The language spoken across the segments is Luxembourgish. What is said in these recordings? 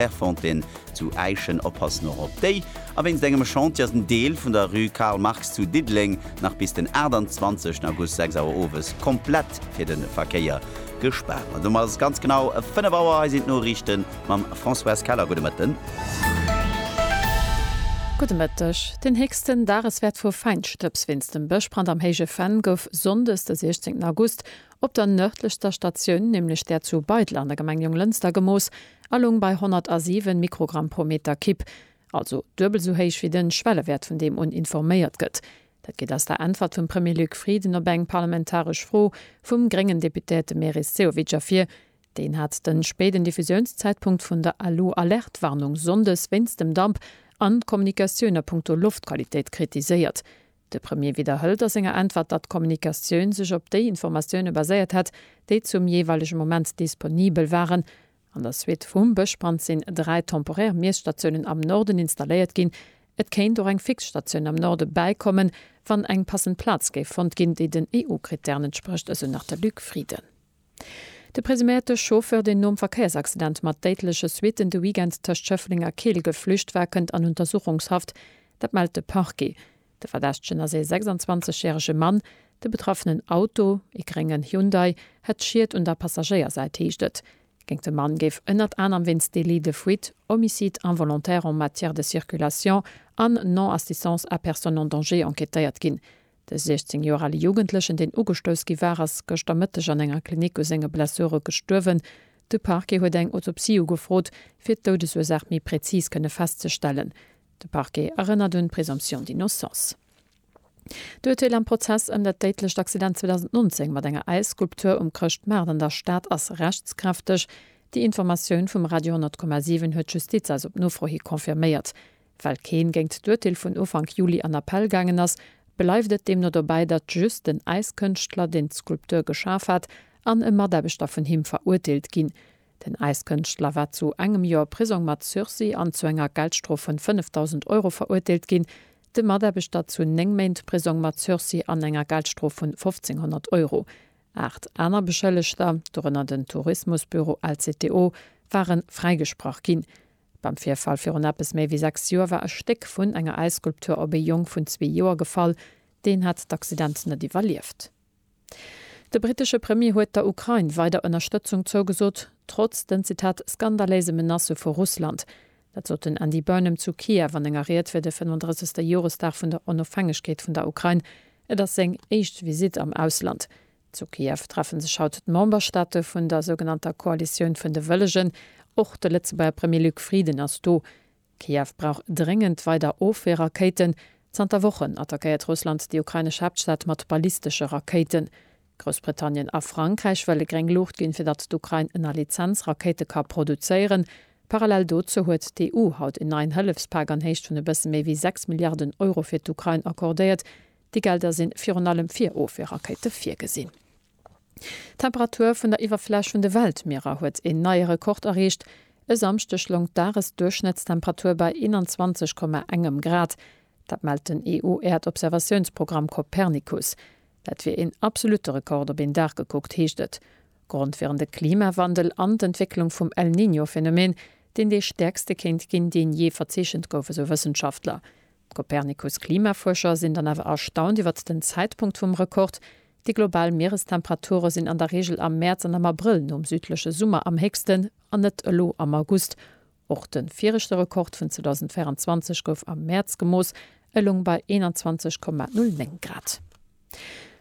Clairefontaine zu Äischen, oppassen och op déi, a wéinst engem Chantier ass en Deel vun der Rue Karl Marx zu Diddeleng nach bis den 28 August 6 Auer owes komplett fir de Verkéier gespaart. An domat ass et ganz genau 5 Auer. Hei sinn d'Noriichte mam Françoise Keller. Gudde Mëtten. Gudde Mëtteg. Den héchsten Dageswäert vu Fäinstëbs wéinst dem Bëschbrand am Héije Venn gouf sonndes de 16 August op der nërdlechster Statioun, nämlech där zu Beidel an der Gemeng Jonglënster, gemooss. a loung bei 107 Mikrogramm pro Meter Kipp, also duebel esou héich wéi de Schwellewäert vun deem un informéiert gëtt. Dat geet aus der Äntwert vum Premier Luc Frieden op eng parlamentaresch Fro vum gréngen Deputéierte Meris Sehovic ervir. Deen hat de spéiden Diffusiounszäitpunkt vun der Alu-Alert-Warnung sonndes wéinst dem Damp an d'Kommunikatioun a Punkto Loftqualitéit kritiséiert. De Premier widderhëlt a senger Äntwert, datt d'Kommunikatioun sech op déi Informatioune baséiert hätt, déi zum jeeweilege Moment disponibel waren. An der Suite vum Bëschbrand sinn dräi temporär Miesstatiounen am Norden installéiert ginn. Et kéint och eng fix Statioun am Norde bäikommen, wann eng passend Plaz géif fonnt ginn, déi den EU-Krittären entsprécht, esou nach de Luc Frieden. De presuméierte Chauffeur, deen nom Verkéiersaccident mat déidleche Suitten de Weekend tëscht Schëffleng a Keel geflücht war, kënnt an Untersuchungshaft. Dat mellt de Parquet. De Verdächtegen ass ee 26 järege Mann. De betraffenen Auto, ee gréngen Hyundai, hätt Schied un der Passagéiersäit, heescht et. Géint de Mann géif ënnert anerem wéinst Délit de fuite, Homicide involontaire en matière de circulation an Non-assistance à personne en danger enquêtéiert ginn. De 16 Joer ale Jugendlechen, deen ugestouss gi war, ass gëschter Mëtteg an enger Klinik u senge Blessure gestuerwen. De Parquet huet eng Autopsie ugefrot, fir d'Doudesursaach méi präzis kënne festzestellen. De Parquet erënnert un d'Présomption d'innocence. D'Urteel am Prozess ëm dat déidlecht Accident 2019 mat enger Äisskulptur um Chrëschtmaart an der Stad ass rechtskräfteg. Déi Informatioun vum Radio 10,7 huet d'Justiz eis op Nofro hi confirméiert. Well keen géingt d'Urteel vun Ufank Juli an Appell gaangen ass, bleift et deemno dobäi, datt just den Äiskënschtler, deen d'Skulptur geschaf hat, an e Mataarbechter vun him verurteelt ginn. Den Äiskënschtler war zu engem Joer Prisong mat Sursis an zu enger Geldstrof vun 5.000 Euro verurteelt ginn, de Mataarbechter zu néng Méint Prisong mat Sursis an enger Geldstrof vun 1.500 Euro. Aacht aner Beschëllegter, dorënner den Tourismusbüro LCTO, ware fräigesprach ginn. Beim Virfall virun eppes méi wéi sechs Joer war e Stéck vun enger Äisskulptur op ee Jong vun zwee Joer gefall. Deen hat d'Accident net iwwerlieft. De brittesche Premier huet der Ukrain weider Ënnerstëtzung zougesot, trotz den, Zitat, skandaléise Menacë vu Russland. Dat sot den Andy Burnham zu Kiew an enger Ried fir de 35. Joresdag vun der Onofhängegkeet vun der Ukrain. Et ass seng éischt Visitt am Ausland. Zu Kiew treffe sech haut d'Memberstaate vun der sougenannter Koalitioun vun de Wëllegen. Och de Lëtzebuerger Premier Luc Frieden ass do. Kiew brauch dréngend weider Ofweerrakéiten. Zanter Wochen attackéiert Russland déi ukrainesch Haaptstad mat ballistesche Rakéiten. Groussbritannien a Frankräich wëlle gréng Luucht ginn, fir datt d'Ukrain ënner Lizenz Rakéite ka produzéieren. Parallel dozou huet d'EU haut en neien Hëllefspak an Héicht vun e bësse méi wéi 6 Milliarden Euro fir d'Ukrain accordéiert, Déi Gelder sinn virun allem fir Ofweerrakéite virgesinn. D'Temperatur vun der Iwwerfläch vun de Weltmierer huet een neie Rekord erreecht. E Samschdeg loung d'Dagesduerchschnëttstemperatur bei 21,1 Grad. Dat mellt den EU-Äerdobservatiounsprogramm Copernicus. Dat wier een absolutte Rekord op een Dag gekuckt, heescht et. Grond wieren de Klimawandel an d'Entwécklung vum El Niño-Phenomen, deen dee stäerkste kéint ginn, deen jee verzeechent gouf, esou Wëssenschaftler. D'Copernicus-Klimafuerscher sinn dann awer erstaunt iwwert den Zäitpunkt vum Rekord, Déi global Mierestemperature sinn an der Reegel am Mäerz an am Abrëll nom südleche Summer am héchsten, an net elo am August. Och de viregte Rekord vun 2024 gouf am Mäerz gemooss, e loung bei 21,09 Grad.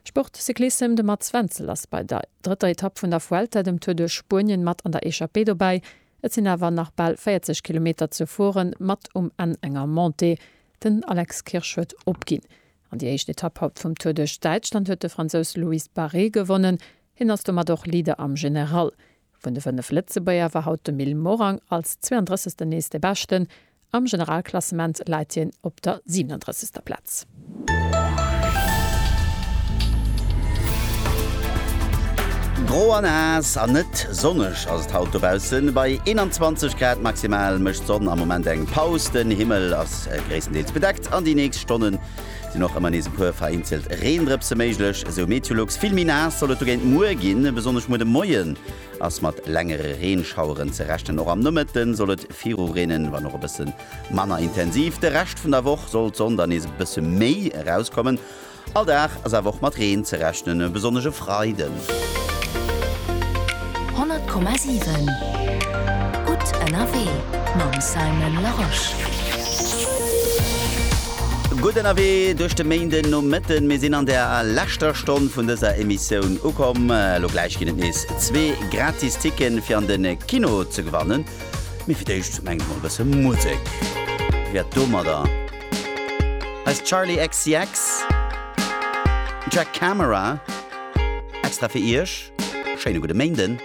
Sport, Cyclissem, De Mats Wenzel ass bei der drëtter Etapp vun der Vuelta, dem Tour duerch Spuenien, mat an der Echappée dobäi. Et sinn awer nach bal 40 Kilometer ze fueren, mat um Enn enger Montée. Den Alex Kirsch huet opginn. An déi éischt Etapp haut vum Tour duerch Däitschland huet de Fransous Loïs Barré gewonnen. Hien ass domat och Leader am General. Vun de 5 Lëtzebuerger war haut de Mil Morang als 32. nees de Beschten. Am Generalklassement läit hien op der 37. Plaz. Gro a naass an net sonneg ass et haut dobaussen. Bei 21 Grad maximal mécht d'Sonn am Moment eng Paus. Den Himmel ass gréisstendeels bedeckt an déi nächst Stonnen sinn och ëmmer nees e puer vereenzelt Reendrëpse méiglech, esou Meteolux. Vill méi naass soll et dogéint muer ginn, besonnesch muer de Moien. Ass mat längere Reenschaueren ze rechnen. Och am Nomëtte soll et viru reenen, wann och e bësse manner intensiv. De Rescht vun der Woch soll d'Sonn dann nees e bësse méi erauskommen. All Dag ass awer och mat Reen ze rechnen, besonnesch e Freiden. 100,7 gutt ënnerwee mam Simon Larosche. Gutt ënnerwee duerch de Méindenomëtten. Mir sinn an der leschter Stonn vun dëser Emissioun ukomm. Elo gläich ginn et nees zwee gratis Ticketen fir an de Kino ze gewannen. Mee fir d'éischt mengen ech mol e bësse Musek wäert domadder. Hei ass Charli XCX, Track Camera, extra fir iech. Schéine gudde Méinden.